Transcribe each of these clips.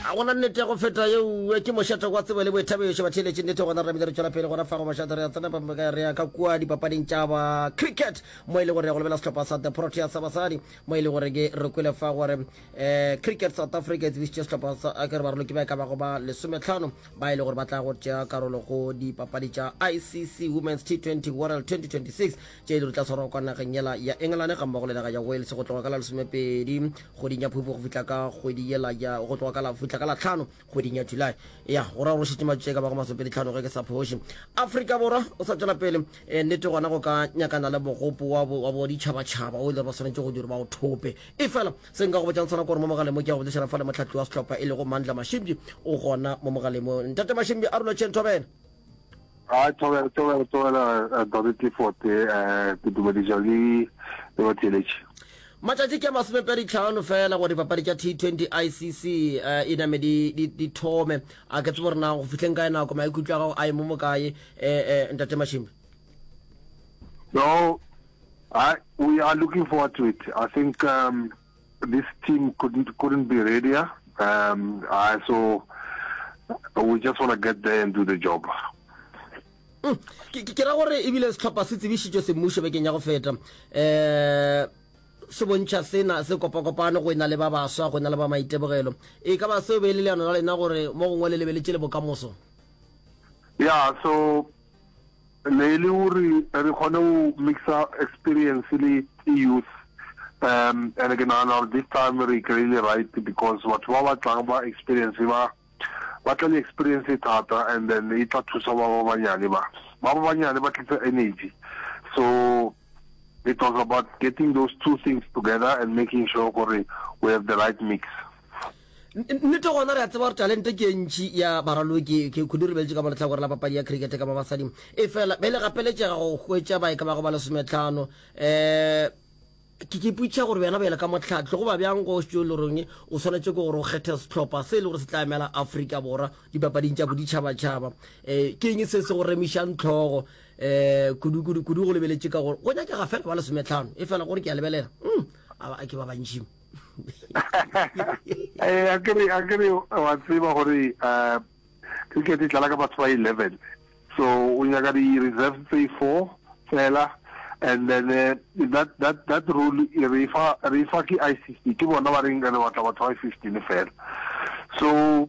a gona nnete ya go feta yeo ke mošate kwa tsebo le boithabišo batheeletše nnete gona ramile re tšwela pele gona fago mašate re ya tsena pameka re ya ka kua dipapading tša ba cricket mo e le gore ya go lebela sehlopha sa the protea sa basadi mo e le gore ke re kwele fa gore um cricket south africa e tsebišitše sehlopha sa eh, ke re baroloki ba e ka bago ba lesometlhano ba e le gore ba tla go tšea karolo go dipapadi tša icc women's t20 world 2026 tše e le di tla tshwarwa kwa nageng yela ya engelane ga mmogo le naga ya wales go tloga ka la lesomepedi kgweding ya phupu go fihla ka kgwedi yela ya go tloga ka la fihla ka la tlhano kgweding ya july ya go ra rošitše matšee ka bago masopedi tlhano ge ke sa phoši afrika borwa o sa tšwela pele eh, nnete gona go ka nyakana le mogopo wa boditšhabatšhaba o e le ba swanetše go dira ba o thope e fela se nka go botšang tshwana kore mo mogaleng mo ke ya go botšišana fa le motlhatli wa setlhopha e lego mandla mashimbi o gona mo mogaleng mo ntate mashimbi a rula tšhentho bena a tšobela tšobela tšobela eh, Dore Clifford eh, eh, ke dumediša le le batheletši matšatši ke masomepedi tlhano fela gore dipapadi tša t20 icc um e name di thome a ke tsebo rena go fitlheng kae nako maikutlo a gago a emo mokae um ntate mashimbe no I, we are looking forward to it i think um, This team couldn't couldn't be readier. Um, uh, so we just want to get there and do the job. Mm. ke ra gore ebile setlhopha se tsebišitšwe semmušo bekeng ya go feta um se bontšha sena se kopakopane go e na le ba baswa go e na le ba maitebogelo e ka ba seo be e le leano la lena gore mo gongwe le lebeletse le bokamoso yeah so ne e le gore re kgone go mixa experience le youth um and ke nagana gore this time re kry-ile right because batho ba ba tlang ba experience ba ba tla le experience e thata and then e tla thusa ba ba banyane ba ba ba banyane ba tlisa energy so it was about getting those two things together and making sure gore we have the right mix Nnete gona re a tseba gore talente ke e ntši ya baraloki ke kudu re beletše ka mo lehlakore la papadi ya cricket ka ba basadi. Efela be le gapeletšega go hwetša ba e ka bago ba lesometlhano. Um Ke ke ipotšiša gore wena bjale ka mohlahli goba bjang go šitšo le rong o swanetše ke gore o kgethe sehlopha se e le gore se tla emela Afrika Borwa dipapading tša boditšhabatšhaba. Um Ke eng se se go remišang tlhogo um kudu kudu kudu go lebeletše ka gore go nyakega fela ba lesometlhano efela gore ke a lebelela um a ke ba bantši. eh a kere a kere wa tseba gore uh cricket e tlala ka batho ba 11 so o nyaka di reserve tse four fela and then uh, that that that rule e re fa re fa ke ICC ke bona ba reng re batla batho ba 15 fela so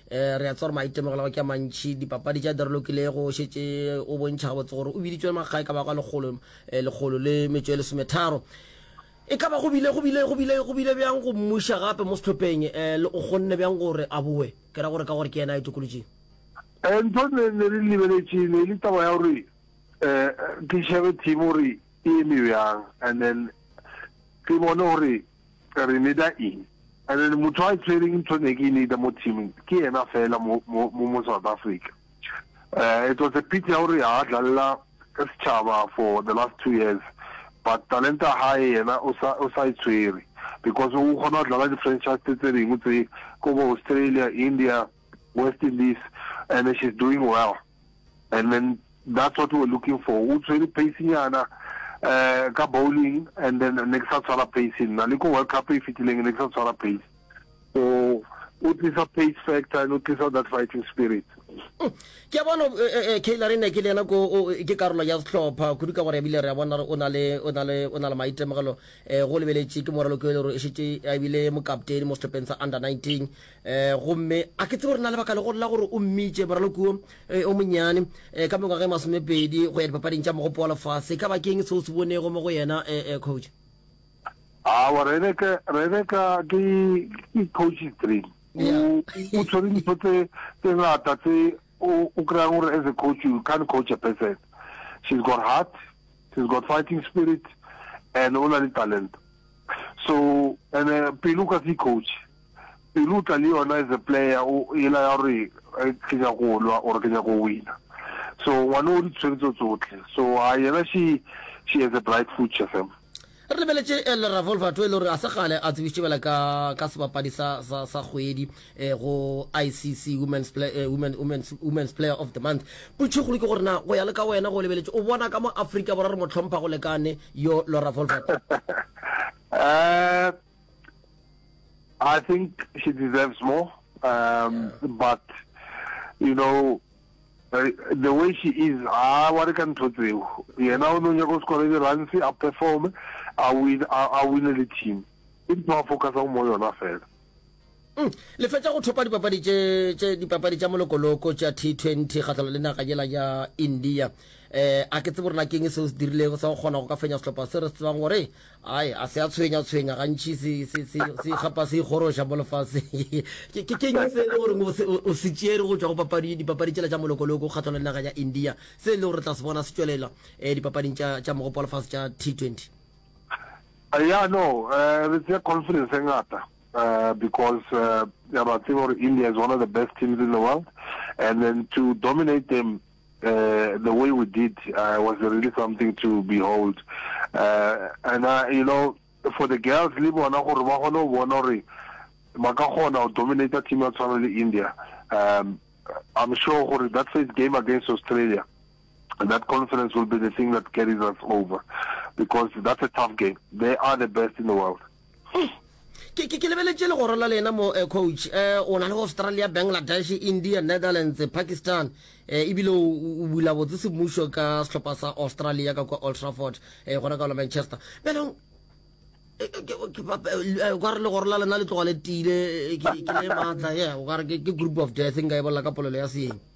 Eh, re a tswa gore maitemogelo go ke mantšhi dipapadi tša dirolokilego o šetse o bontšha gabotse gore o biditswe makgae ka baka lekgolo eh, lekgolo le metso e lesometharo e ka ba go bile go bile go bile go bile bjang go mmuša gape mo setlhopheng um le o kgonne bjang gore a boe ke ra gore ka gore ke yena a itokolotseng eh, ntho ne ne re lebeletše ne e le taba ya gore um ke šebe team gore e eme bjang and then ke bone gore Re need-a eng? And then motho a tshwereng ntho ne ke need-a mo teaming ke yena fela mo mo mo South Africa. Uh, it was a pity ya gore ha dlalela ka setšhaba for the last two years but talenta hae yena o sa o sa e tshwere because o kgona go dlala di-franchise tse tse dingwe tse ko bo Australia, India, West Indies and she's doing well. and then that's what we were looking for o tshwere pace nyana eh ka bowling and then ne ke sa tshwara pace nna le ko world cup e fitileng ne ke sa tshwara pace so o tlisa pace factor and o tlisa that fighting spirit mm. ke a bona eh, eh, eh, kailare ne ke le ena ko ke karolo ya setlhopha kudu ka gore ebile re a bona gore o na le o na le o na le maitemogelo um go lebeletše ke moralo ke le gore e šetse a ebile mokaptene mo setlhopheng sa under 19 um gomme a ke tsebo re na le baka legolo la gore o mmitše moralokuo um eh, o monyane um eh, ka mengwaga e masomepedi go ya dipapading tša mogopo wa lefase e ka bakeng seo se bonego mo go yena um coach awa rebeka rebeka ke ke coach three o tshwere dintho tse tse ngata tse o kry-ang gore as a coach you can't coach a person she's got heart she's got fighting spirit and o na le talent so and eh, pelo ka se coach pelo tla le yona as a player o ela ya gore eh, ke nya go lwa or ke nya go wina so ngwana o di tshwetso tsotlhe so a yena she she has a bright future fam re lebeletše eh, le ravolva to e le gore a se gale a tsebišitše bela ka sebapadi sa kgwedi eh, go icc women's, play, eh, women, women's, women's player of the month putšhegolo ke gore na go ya le ka wena go lebeletse o bona ka mo aforika borwa re mo tlhompha go lekane yo laura volvat uh, i think she deserves more um, yeah. but you know uh, the way she is a wa re ka ntho tseo yena o ne o nyaka o sekole di-runs a perform a win a wine le team e ntho a focusang mo yona fela Mm. le fetša go thopa dipapadi tše tše dipapadi tša molokoloko tša T20 kgahlano le naga yela ya India eh a ke tsebo rena keng se o se dirilego sa go kgona go ka fenya sehlopha se re se tsebang gore ai a se a tshwenya tshwenya gantši se se se se gapa se ikgoroša mo lefase ke ke keng se le gore o se tšere go tšwa go papadi dipapadi tšela tša molokoloko kgahlano le naga ya India se le gore tla se bona se tšwelela eh dipapading tša tša mogopo wa lefase tša T20 Eh, ya no eh, re tsea confidence e ngata eh, because eh, ya ba tseba gore india is one of the best teams in the world and then to dominate them uh, the way we did uh, was really something to behold uh, and uh, you know for the girls le bona gore ba kgone go bona gore ba ka kgona go dominata team ya tshwana le india um, i'm sure gore that first game against australia And that conference will be the thing that carries us over because that's a tough game. They are the best in the world. Hmm. ke ke ke lebeletse legoro la lena mo eh, coach eh o na le australia bangladesh india netherlands pakistan eh ebile o bula botse semmušo ka sehlopha sa australia ka kwa old trafford eh gona ka la manchester belong eh, eh, eh, okare legoro la lena le tloga le tile ke le maatla ye okare ke group of death nka e bolela ka polelo ya seeng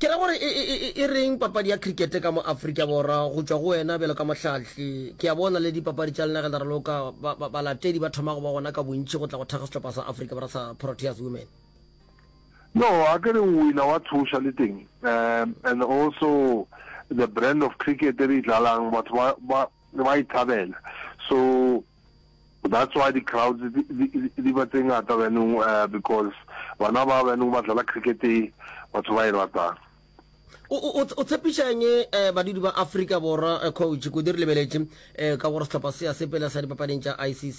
Ke ra gore e, e, e, e reng papadi ya cricket ka mo Afrika Borwa, go tšwa go wena bjalo ka mohlahli. Ke a bona le dipapadi tša lena ge le raloka, ba, ba, balatedi ba thoma go ba gona ka bontši go tla go thakga sehlopha sa Afrika Borwa sa Proteas Women. No, a ke re o wina wa tshoša le teng. Um, and also the brand of cricket e re e dlalang, batho ba, ba, ba e thabela. So, That's why di crowds di ba tse ngata byanong eh, because bana ba byanong ba dlala cricket e batho ba e ratang o tshepišang um badudi ba afrika borwa eh, coach kodi re lebeletše um ka gore sehlopha se ya sepela sa dipapading tša icc